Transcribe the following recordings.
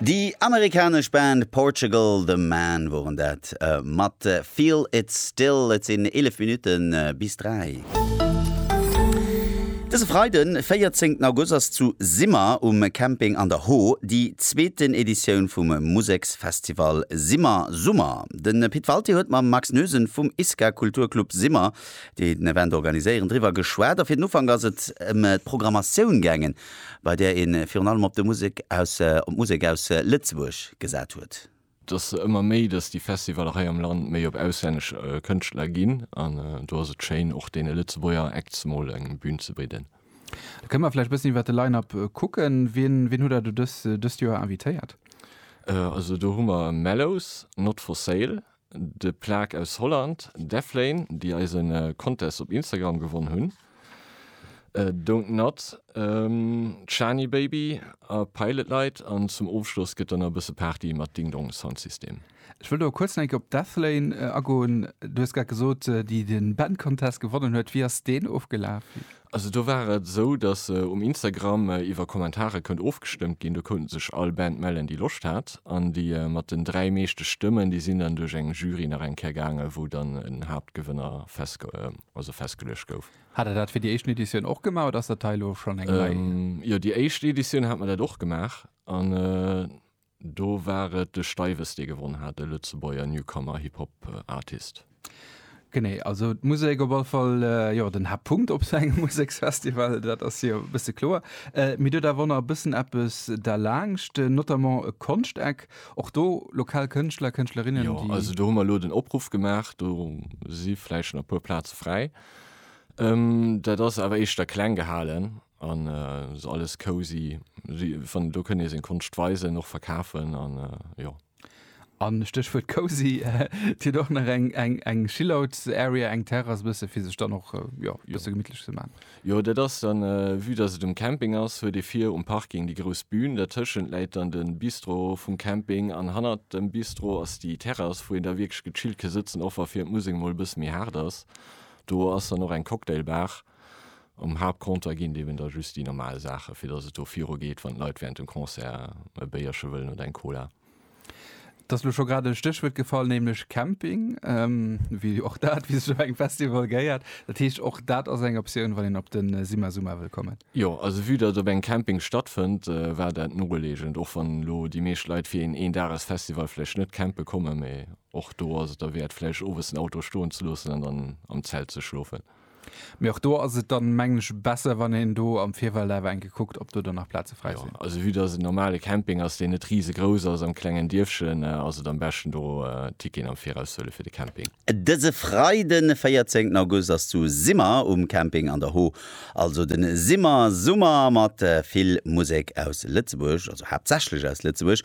Déi amerikanesch Band Portugal The Man woren dat mat Feel It Still. Et sinn 11 Minutte bis 3. Dëse Freide 14 August ass zu Simmer um Camping an der Hoo déi zweeten Editioun vum Museksfestival Simmer Summer. De Pit Walté huet mam Max Noesen vum ISKA Kulturclub Simmer, déi den Event organiséieren, driwwer geschwat a fir den Ufank ass et ëm d'Programmatioun gaangen. bei där ee virun allem op d'Musek aus Lëtzebuerg gesat huet. Et ass ëmmer méi, datt déi Festivaller hei am Land méi op auslännesch Kënschtler ginn an do ass et schéin, och deene Lëtzebuerger Acts mol eng Bün ze bidden. Da kënne mer vläicht e bëssen iwwer de Line-Up kucken. Wien hutt Der do dëst Joer invitéiert? Also do hu mer Mellows, Not For Sale, De Plaque aus Holland, Deflane, déi eise Contest op Instagram gewonn hunn, Don't Nod, Chani Baby a Pilot Light an zum Ofschloss gëtt dann nach e bësse Party mat Ding Dong Sound System. Ech wëll do kuerz nach eng Kéier op Deflane agoen. Du hues grad gesot, déi de Band Contest gewonnen huet. Wéi ass deen ofgelaf? Also do war et esou, datt um Instagram iwwer Kommentare kënnt ofgestëmmt ginn. Do kount sech all Band mellen, déi Loscht hat. An déi mat den dräi meeschte Stëmmen, déi sinn dann duerch eng Jury nach eng Kéier gaangen, wou dann en Haaptgewënner festgeluecht gouf. Hat der dat fir déi éischten Editioun och gemaach oder ass dat hei elo schonn eng nei? Jo, déi éischt Editioun hat mer dat och gemaach. Do war et de Steiwes, dee gewonn hat, de Lëtzebuerger Newcomer Hip Hop Artist. Genee, also d'Musek op alle Fall, jo, den Haaptpunkt op esou engem Museksfestival, dat ass jo e bësse kloer. Mee do huet awer och nach e bëssen eppes derlaanscht, notamment e Konschteck, och do lokal Kënschtler, Kënschtlerinnen, déi. Jo, also do hu mer elo den Opruff gemaach, do si vläicht nach e puer Plaze fräi. Dat ass awer éischter kleng gehalen. An so alles cozy. Wann do kënnt ee seng Konscht weisen, och verkafen an jo. A Stéchwuert cozy, et huet och nach eng chillout area, eng Terrass e bësse fir sech dann och jo e bësse gemittlech ze man. Jo dat ass dann, vue dass et um Camping ass, huet ee vir um Parking déi grouss Bühn, dertëschent läit dann de Bistro vum Camping an hannert dem Bistro ass déi Terrass, wou een da wierklech gechillt ke sëtzen, och wa fir d'Musek emol e bësse méi haart ass. Do ass dann och eng Cocktailbar. Um Haaptcompter ginn et eben da just déi normal Saachen, fir datt et do viru geet, wann d'Leit wärend dem Concert e Béierche wëllen oder eng Cola. Et ass elo scho grad e Stéchwuert gefall, nämlech Camping, wéi och dat, wéi sech op engem Festival gehéiert. Dat heescht, och dat ass eng Optioun, wann een op de Simma-Summa wëll kommen. Jo, also vue datt et op engem Camping stattfënnt, war dat nolegend, och wann elo déi meescht Leit fir een Een-Dages-Festival vläicht net campe kommen. Mee och do ass et derwäert, vläicht owes den Auto stoen ze loossen an dann am Zelt ze schlofen. Mee och do ass et dann, mengen ech, besser, wann een do am Virfeld awer eng Kéier kuckt, ob do dann nach Plaze fräi sinn. Jo, also vue dass et en normale Camping ass, deen net risegrouss ass, am klengen Dierfchen, ass et am beschten, do Ticketen am Viraus ze huelen fir de Camping. Dëse Freiden de 14 August ass zu Simmer um Camping an der Ho also de Simmer Summer mat vill Musek aus Lëtzebuerg, also haaptsächlech aus Lëtzebuerg.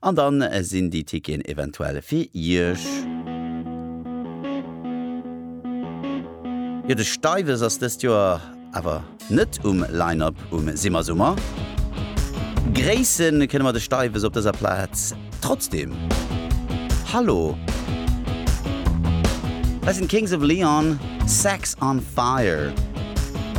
An dann sinn déi Ticketen eventuell fir Iech. Jo de Steiwes ass dëst Joer awer net um Line-Up um Simmersummer. Gréisse kënne mer de Steiwes op dëser Plaz trotzdeem. Hallo. Hei sinn d'Kings of Leon, Sex on Fire.